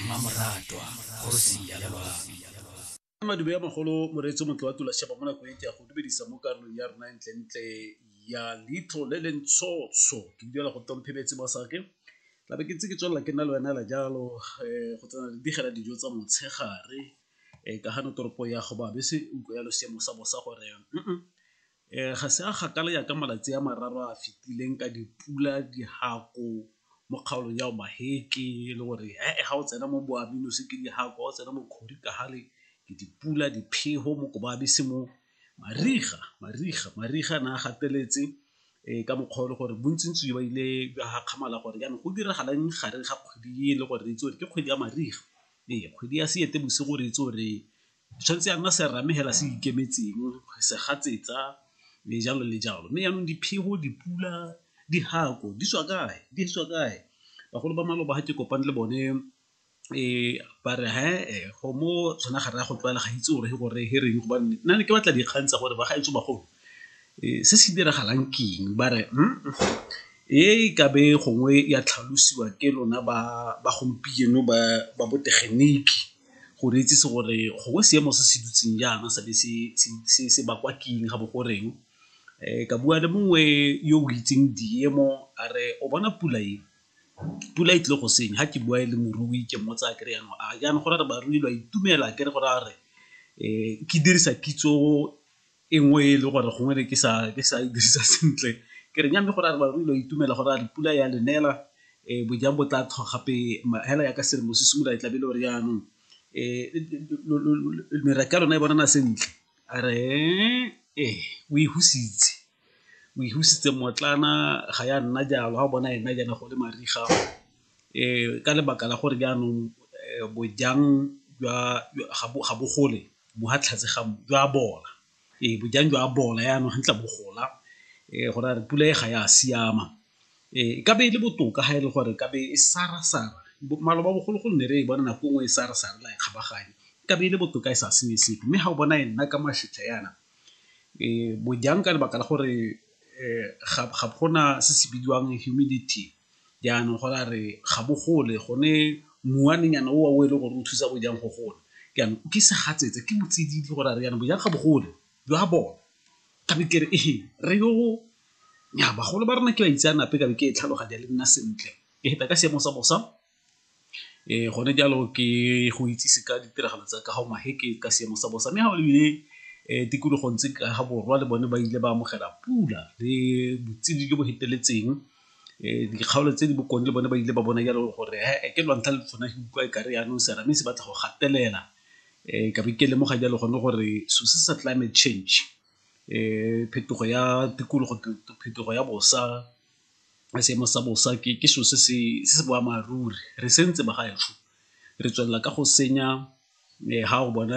mmamoratwa kgosi ya madume ya magolo moreetso motlo wa tula sheba mo nako e ke ya go dumedisa mo karolong ya rona ntlentle ya litlo le le ntshotsho ke duela go tomphebetse ba sake tla be ke tse ke tswelela ke nna le wena la jalo um go tsena le digela dijo tsa motshegare um ka gano toropo ya go babese utlwa ya losiamo sa bosa gore Ga se a kgakala jaaka malatsi a mararo a a fetileng ka dipula, dihako mo kgaolong ya Omaheke e le gore ga o tsena mo Boamanose ke dihako, ga o tsena mo Kgorikagale ke dipula, diphefo mo Kobabese mo. Mariga, mariga, mariga a ne a gateletse ka mokgwa o le gore bontsi-ntsi ba ile ba gakgamala gore jaanong go diragalang gareng ga kgwedi e le gore re itse gore ke kgwedi ya mariga, ee kgwedi ya Seetebosigo re itse gore Tshwanetse ya nna serame hela se ikemetseng, segatsetsa le jalo le jalo. Mme yanong diphego, dipula, dihako di tswa kae? Di tswa kae? Bagolo ba maloba ha ke kopane le bone ba re he-eh go mo tshwana ga reye go tlwaela ga itse gore he gore he reng gobane nna ne ke batla dikgang tsa gore ba gaetsho bagolo se se diragalang ke eng? Ba re e ka be gongwe ya tlhalosiwa ke lona ba gompieno ba botegeniki. go re itsise gore gongwe seemo se se dutseng jaana sa be se bakwa keng ga bo goreng. Ka bua le mongwe yo o itseng diemo a re o bona pula e, pula e tlile go senya. Ga ke bua e le morui ke mmotsa ke re jaanong a jaanong go ra re barui lo a itumela akere go ra re ke dirisa kitso e nngwe e le gore gongwe ne ke sa ke sa e dirisa sentle ke re nya mme gore a re ba rui lo itumela gore a re pula ya lenela um bojang bo tla tlhoga gape hela ya ka selemo se simolola e tlabe e le gore jaanong um meraka ya lona e bonana sentle a re ee o e husitse o e husitse mmotlana ga ya nna jalo ga o bona ena jaana go le mariga um ka lebaka la gore jaanong bojang jwa ga bo gole bo ha tlhatse ga mmu jwa bola ee bojang jwa bola yaanong gantla bo gola um go ra re pula e ga ya siama um e ka be e le botoka ga e le gore ka be e sara-sara maloba bogologolo ne re e bona nako nngwe e sara-sara la e kgabaganya e ka be e le botoka e sa senye sepe mme ga o bona e nna ka mašetla yana um bojang ka lebaka la gore um ga gona se se bidiwang humidity Jaanong go ra re ga bo gole gone muanenyana o wa o e le gore o thusa bojang go gola. Jaanong o ke segatsetse ke botsididi go ra re jaanong bojang ga bo gole jo a bona ka be ke re ee re yo nya bagolo ba rona ke ba itseanape ka be ke e tlhaloganya le nna sentle ke heta ka seemo sa bosa Ee, gone jalo ke go itsise ka ditiragalo tsa kago ka seemo sa bosa mme ga o lebile tikologong tse ka ga borwa le bone ba ile ba amogela pula le botshedi jo bo feteletseng. Dikgaolo tse di bokone le bone ba ile ba bona jalo gore he-e ke lwantlha le tshwana ke utlwa e kare yanong serame se batla go gatelela ka be ke lemoga jalo gone gore so se sa climate change phetogo ya tikologo, phetogo ya bosa. seemo sa bosa ke selo se se boammaaruri re sentse ba gaetsho re tswelela ka go senya ga o bona